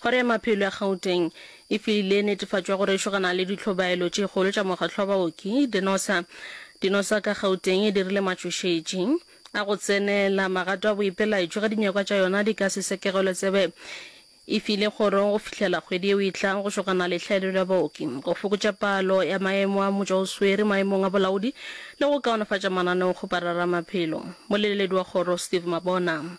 Kgoro ya Maphelo ya Gauteng e filile netefatšo ya go rešogana le ditlhobaelo tše kgolo tša mokgatlo wa baoki, Dinosa. Dinosa ka Gauteng e dirile matšošetši a go tsenela magato a boipelaetšo ge dinyakwa tša yona di ka se sekegelwe tsebe e file kgoro go fihlela kgwedi yeo e tlang go šogana le hlaelelo ya baoki, go fokotša palo ya maemo a motšwaoswere maemong a bolaodi le go kaonafatša mananeo go parara maphelo. Moleleledi wa kgoro, Steve Mabona.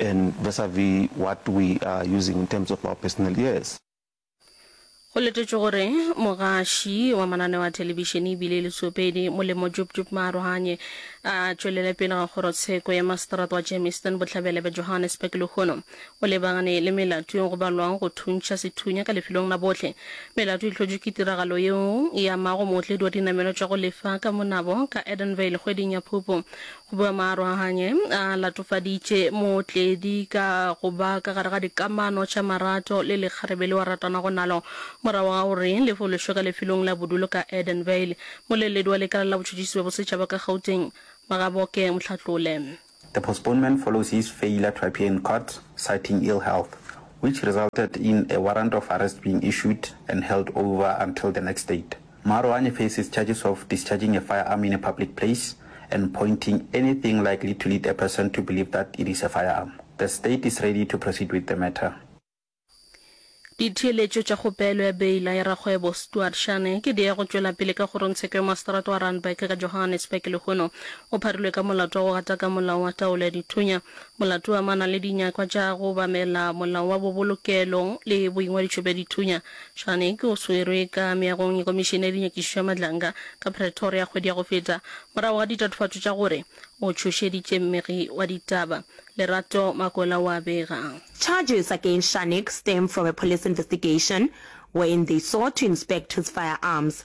and vis a vis what we are using in terms of our personal ears. Go letetšwe gore mogaši wa mananeo a thelebišene e bile e le tšopedi molemo Jub Jub Maarohanye a tšwelele pele ga kgorotsheko ya maseterata wa Germiston bohlabela bja Johannesburg lehono o lebagane le melato e go balwago go thuntšha sethunya ka lefelong la bohle. Melato e hlotšwe ke tiragalo yeo e amago mootledi wa dinamelwa tša go lefa ka monabo ka Edenvale kgweding ya Phupu Boemarohanye a latofaditše Mootledi ka go ba ka gare ga dikamano tša marato le lekgarebe leo a ratanago nalo. Morago ga gore le fološwe ka lefelong la bodulo ka Edenvale, moleledi wa Lekala la Botšhotšhisi bja Bosetšhaba ka Gauteng, Magaboke Mohlatlole, The postponement follows his failure to appear in court citing ill health, which resulted in a warrant of arrest being issued and held over until the next date. Marouane faces charges of discharging a firearm in a public place and pointing anything likely to lead a person to believe that it is a firearm. The state is ready to proceed with the matter. Ditheeletšo tša kgopelo ya beila ya rakgwebo Stuart Shane ke di ya go tšwela pele ka kgorongtsheko ya maseterata wa Randburg ka Johannesburg lehono. O pharilwe ka molato wa go gataka molao wa taolo ya dithunya. Molato o amana le dinyakwa tša go obamela molao wa bobolokelo le boingwadišo bja dithunya. Shanik o swerwe ka meagong ya Komišene ya Dinyakišišo ya Matlanga ka Pretoria kgwedi ya go feta morago ga ditatofatšo tša gore o tšhošeditše mmegi wa ditaba, Lerato Makola wa bega. Charges against Shanik stem from a police investigation wherein they sought to inspect his firearms.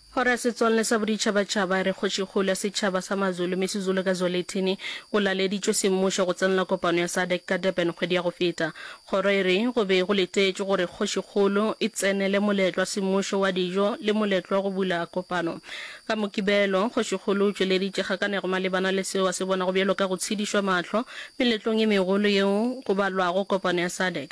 Kgoro ya Setswalle sa Boditšhabatšhaba e re kgošikgolo ya setšhaba sa Mazulu, Misizulu ka Zwelithini, o laleditšwe semmušo go tsenela kopano ya Sadc ka Durban kgwedi ya go feta. Kgoro e re go be go letetšwe gore kgošikgolo e tsenele moletlo wa semmušo wa dijo le moletlo wa go bula kopano. Ka Mokibelo, kgošikgolo o tšweleditše kgakanego malebana le seo a se bonago bjalo ka go tshedišwa mahlo meletlong ye megolo yeo go balwago kopano ya Sadc.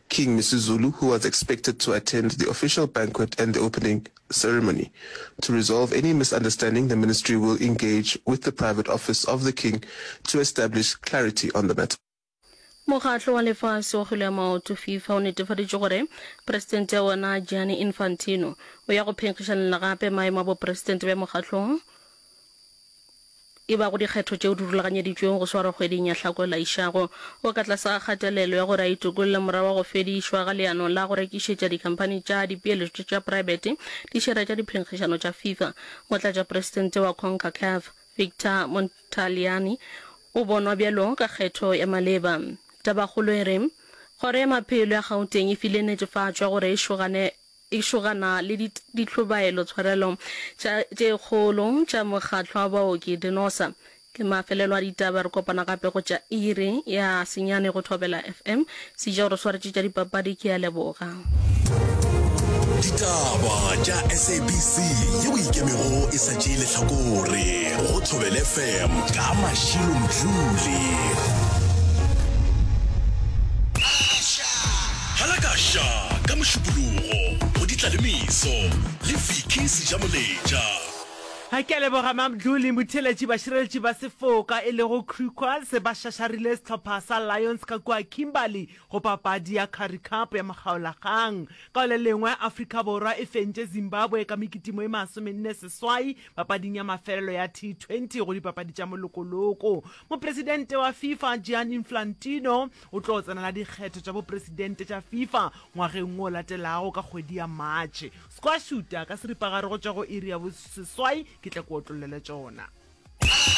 King Misuzulu who was expected to attend the official banquet and the opening ceremony. To resolve any misunderstanding the ministry will engage with the private office of the King to establish clarity on the matter. Mokgatlo wa lefase wa kgwele ya maoto, Fifa, o netefaditše gore presidente ya wona Gianni Infantino o ya go phenkgišanela gape maemo a bopresidente bja mokgatlong. e bago dikgetho tšeo di rulaganyeditšwego go swarwa kgweding ya Hlako e laišago. O ka tlase ga kgatelelo ya gore a itokolle morago ga go fedišwa ga leano la go rekišetša dikhamphani tša dipeeletšo tša praebete dišere tša diphenkgišano tša FIFA. Motlatšapresidente wa Concacaf, Victor Montagliani, o bonwa bjalo ka kgetho ya maleba. Tabakgolo e re, Kgoro ya Maphelo ya Gauteng e file netefatšo ya gore e šogane e šogana le ditlhobaelo tshwarelo tša tše kgolo tša mokgatlo wa baoki Dinosa. Ke mafelelo a ditaba, re kopana gape go tša iri ya senyane go Thobela FM. Sejao re swaretše tša dipapadi, ke a leboga. Ditaba tša SABC ye o ikemego e sa tšee lehlakore go Thobele FM ka Mashilo Mdluli. Phala ka Sha ka Mošupologo go di tla le Meso le Vicky Sejamoletša. Ga ke a leboga Mamdlul le motheeletši bašireletši ba sefoka e lego Crew Quads ba šašarile sehlopha sa Lions ka kua Kimberley go papadi ya Currie Cup ya Mokgaolakgang. Ka go le lengwe, Afrika Borwa e fentše Zimbabwe ka mekitimo e masomenne seswai papading ya mafelelo ya T20 go dipapadi tša molokoloko. Mopresidente wa FIFA Gianni Inflantino O tlo tsenela dikgetho tša bopresidente tša Fifa ngwageng wo o latelago ka kgwedi ya Matšhe. Squashuta ka seripagare go tšwa go iri ya boseswai ke tla ku otlollele tšona.